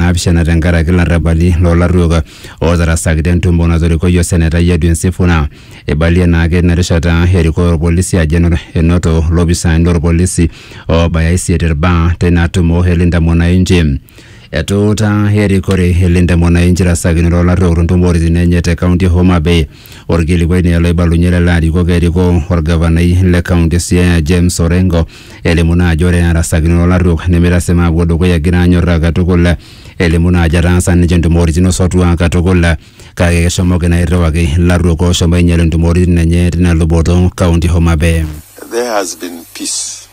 naapishana tenkaraki larrabali loolarruok ootarasaki tentumo natorikoyie osenetai Edwin Sifuna. Eibalie naake ina rishata erikoo olpolisi ajo eno- enoto lopisaani lolpolisi oobaya isiet ilbaa teina tumo e Linda Mwananchi. Etuutaa erikore e Linda Mwananchi rasakinoto olarruok to ntumoritin enye te kaunti e Homa Bay Orkilikuai naa oloibalunye lelo arikok erikoo orgavanai le kaunti e Siaya James Orengo elimu naa ajo ore arasakinoto olarruok nemeitasima apuo dukuya egira anyorraa katukul elimu naa ajo etaasa ninche intumoritin o sotua katukul kake keshomoki naa airriwaki ilarruok ooshomo ainyal intumoritin enye tina luboto kaunti e Homa Bay. there has been peace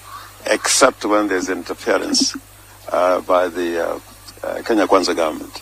except when there's interference uh, by the uh, uh, Kenya Kwanza government.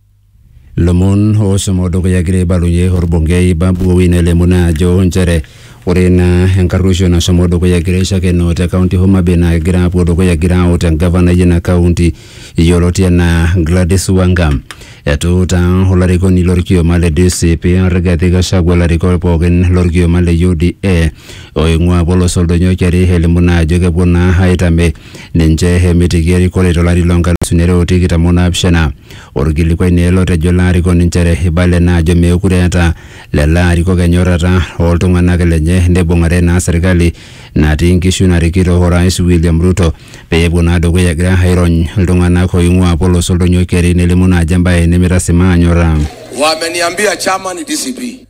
Lomon oosomo dukuya egira aibalunye olbungei Babu Owino elimu naa ajo nchere ore ina enkarruisho nasomo dukuya egira aishakenoo te kaunti e Homa Bay naa kegira apuo dukuya egira aut engavanai ina kaunti yioloti enaa Gladys Wanga. Etuutaa olarikoni lolkioma le DCP Rigathi Gachagua ilarikok pookin lolkioma le UDA oing'ua apa olosho Oldonyio Keri elimu naa ajo kepuo naa aitame ninche emitiki erikore to lari loo nkalisuni are o tikitam o naapishana. Olkilikuai naa ele otejo ilo arikoni nchere eibale naa ajo meekure eeta lelo arikok enyorrata oo ltung'anak lenye neibung'are naa serkali natii nkishu narikito Orais William Ruto pee epuo naa dukuya egira airony iltung'anak ooing'ua apa olosho Oldonyio Keri nelimu naa ajo embae nemeitasimaa anyorra. Wameniambia chama ni DCP.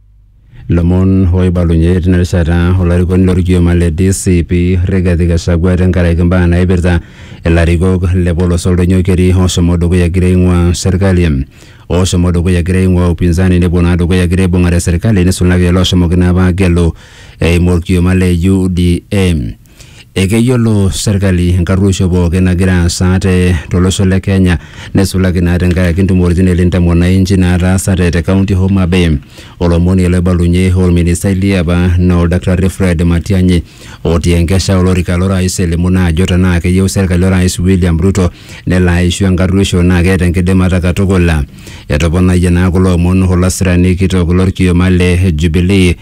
Lomon oibalunye tina rishata olarikoni lorkioma le DCP Rigathi Gachagua tenkaraki mbaa naipirta ilarikok le polos oldoinyo keri oshomo dukuya egira aing'ua serkali oshomo dukuya egira aing'ua upinzani nepuo naa dukuya egira aibung'are serkali nisulaki loshomoki naa apa agelu eimu orkioma le UDA. Ekeyiolo serkali enkarruoisho pooki nagira aasa te tolosho le Kenya neisulaki naa tenkaraki ntumoritin e Linda Mwananchi naataasate te kaunti e Homa Bay. Olomoni ele obalunye olministai liapa naa Oldakitari Fred Matiang'i otii enkesha olorika lo rais elimu naa ajo tenaa keyieu serkali o rais William Ruto nelo aishu enkarruoisho naa keeta enkidimata katukul. Etoponayie naa kulo omon olasirani kitok lolkioma le Jubilee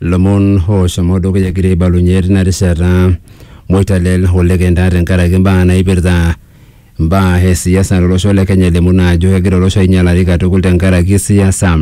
lomon oshomo dukuya egira aibalunye tina rishata moitalel olekenta tenkaraki mbaa naipirta mbaa e siasa tolosho le Kenya elimu naa ajo kegira olosho ainyalari katukul tenkaraki siasa.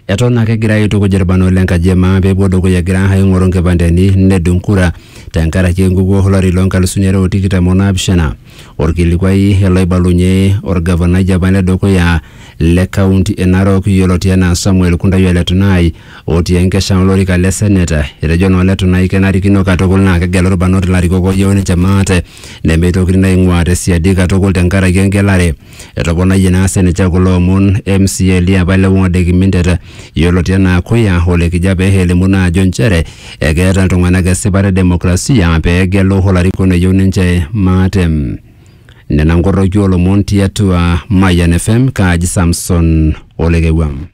Eton ake egira aitukuj irbanot le nkaji e maa pepuo dukuya egira aing'oru nkipandeni nedung kura tenkaraki enkukuo olari loo nkalusuni are o tikitam o naapishana. Olkilikuai ele oibalunye olgavanai le apa le dukuya le kaunti e Narok yioloti anaa Samuel Kundai Ole Tunai otii enkesha olorika le senate. Etejo naa Ole Tunai kenarikino katukul naa kegelu ilbarnot ilarikok ooyieu ninche maate nemeitokini naa aing'uaa te siadi katukul tenkaraki engelare. Etoponayie naa sininche kulo omon MCA liapa le ward e Kimintet yioloti enaa Kuya Ole Kijape elimu naa ajo nchere ekeeta iltung'anak esipata e demokrasia pee egelu olarikoni oyieu ninche maate. Nena nkorroki oo lomon tiatua Mayian FM, kaaji Samson Olekewua.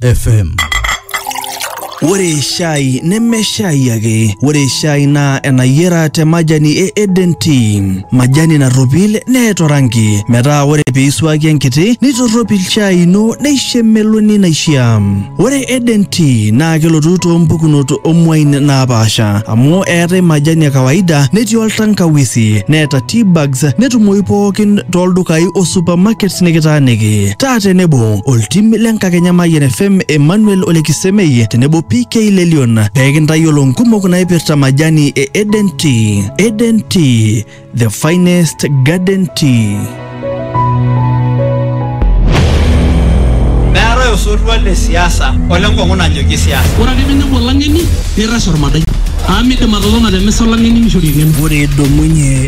FM. Ore shai neme shai ake, ore shai naa enayiera te majani e Eden Tea. Majani narropil neeta orangi, metaa ore pee isuaki enkiti nitorropil shai ino neisho emeloni naishia. Ore Eden Tea naa kelotu too mpukunot omuain naapaasha amu eetae majani e kawaida netii oltankawisi neeta tea bags netumoyu pookin tooldukai o supermarkets nikitaaniki. taa tenebo oltim le nkakenya Mayian FM Emmanuel Ole Kisemei tenebo PK Lelion pee kintayiolo nkumok naipirta majani e Eden Tea. Eden Tea, the finest garden tea. meetae osotua le siasa ole nkong'u nanyokie siasa ore ake penepu olang'eni nirrash ormadai amu midim atotona te misa olang'eni nishori eng'eno ore idumunye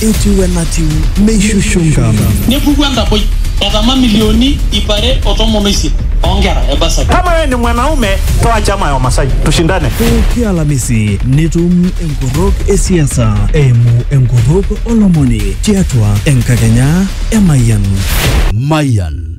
etiu enatiu meishushungam nepuku enkapoi etama milioni ip are o tomon oisiet oonkera e basari Kama wewe ni mwanaume, toa chama ya Wamasai, tushindane. pooki alamisi nitum enkorrok e siasa eimu enkorrok olomoni tiatua enkakenya e mayian Mayan